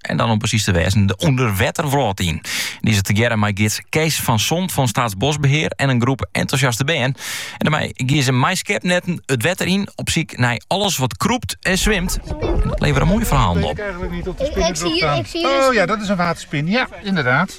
en dan om precies te wêzen de ûnderwetterwrâld yn. Die is tegearre mei gids Kees van Zond fan Staatsbosbeheer en een groep enthousiaste bern. En daarmee gie ze mei skepnetten het wetter in op ziek naar alles wat kroept en zwemt. En dat leveren mooie verhalen op. Ik, zie hier, ik zie hier oh ja, dat is een waterspin. Ja, inderdaad.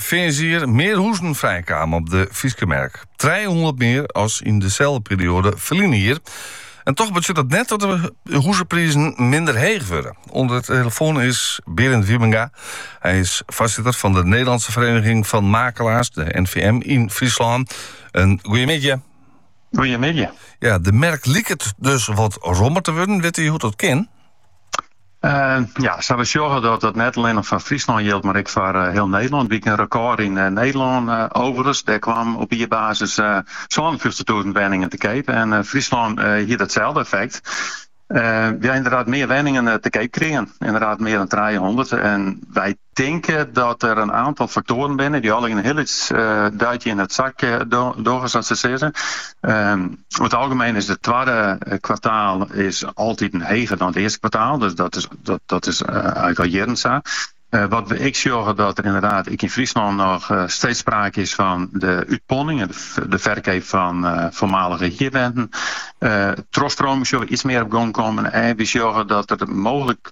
Fearnsjier mear huzen frijkamen op de Fryske merk. 300 mear as yn deselde perioade ferline jier. En toch betsjut dat net dat de huzeprizen minder heech wurde. Oan de telefoan is Berend Wiebenga. Hy is foarsitter fan de Nederlandse Vereniging van Makelaars, de NVM, yn Fryslân. In goeiemiddei. Goeiemiddei. Ja, de merk liket dus wat rommer te wurden. Witte jo hoe't dat kin? ja, sa we sjogge dat dat net allinnich foar Fryslân jildt, mar ek foar eh, hiel Nederlân. Wie ek in rekôr yn eh, Nederlân eh, overigens. Dêr kwam op jierbasis eh, sa'n 52.000 wenningen te keap. En eh, Fryslân eh, hie itselde effekt. Eh, we ha ynderdaad mear wenningen eh, te keap krigen. Ynderdaad mear dan 300. En wy tinke dat der in aantal faktoaren binne die allegear in hiel lyts duitsje yn it sakje dogge sa't se sizze. Oer it algemeen is it twadde kwartaal is altiten heger dan it earste kwartaal, dus dat is eigenlik al jierren sa. Wat we ek sjogge dat der ynderdaad ek yn Fryslân noch steeds sprake is fan de útponning, de ferkeap fan foarmalige hierwenten. Trochstroming sjogge we iets mear op gong kommen en we sjogge dat der mooglik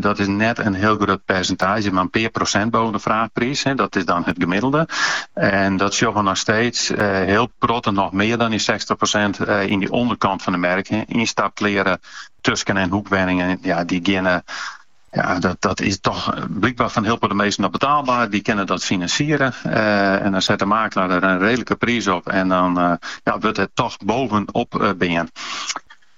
Dat is net in hiel grut persentaazje, mar in pear prosint boven de fraachpriis. Dat is dan it gemiddelde. En dat sjogge we noch steeds hiel protte, noch mear dan dy 60 prosint yn de ûnderkant fan de merk. Ynstapkleare tusken- en hoekwenningen, ja, dy geane, ja, dat is toch blykber foar hiel protte minsken noch betaalber. Dy kinne dat finansiere. En dan set de makelaar der in redelike priis op en dan wurdt it toch bovenop bean.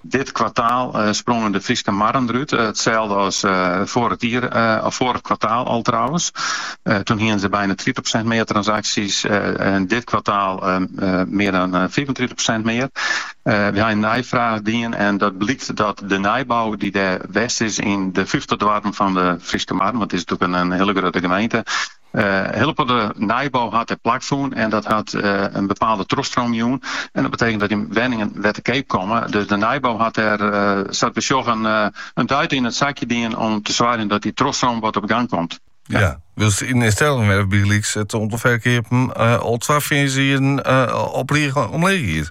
Dit kwartaal sprongen De Fryske Marren derút, itselde as foarich jier of foarich kwartaal al trouwens. Toen hiene se bijna tritich prosint mear transaksjes en dit kwartaal mear dan fiifentritich prosint mear. We ha in neifraach dien en dat blykt dat de nijbou die dêr west is yn de fyftich doarpen fan De Fryske Marren, want it is natuerlik in hiele grutte gemeente, Hiel protte nijbou hat dêr plak fûn en dat hat in bepaalde trochstroom jûn. En dat betekent dat dy wenningen wer te keap komme. Dus de nijbou hat dêr, sa't we sjogge, in duit yn it sakje dien om te soargjen dat dy trochstroom wat op gang komt. Ja, wylst yn Stellingwerf bygelyks it oantal ferkeapen al twa fearnsjieren op rige omleech giet.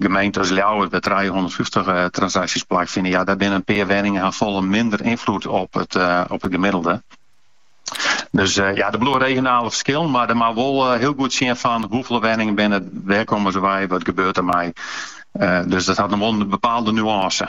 Gemeenten as Ljouwert, wêr't trijehûndertfyftich transaksjes plakfine, ja, dêr binne in pear wenningen ha folle minder ynfloed op it op it gemiddelde. Dus ja, der bliuwe regionale ferskillen, mar der moat wol hiel goed sjen fan hoefolle wenningen binne it, wêr komme se wei, wat gebeurt dermei. Dus dat hat noch wol in bepaalde nuance.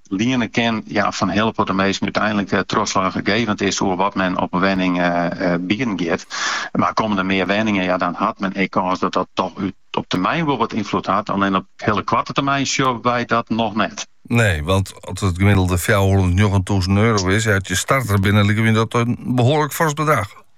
Liene kin, ja, foar hiel protte minsken úteinlik trochslachgevend is oer wat men op in wenning bieden giet. Mar komme der mear wenningen, ja dan hat men ek kâns dat dat toch op termyn wol wat ynfloed hat. Allinne op hiele koarte termyn sjogge wy dat noch net. Nee, want as it gemiddelde fjouwerhûndertnjoggen tûzen euro is, ja, as je starter binne, liket my dat in behoarlik fors bedrach.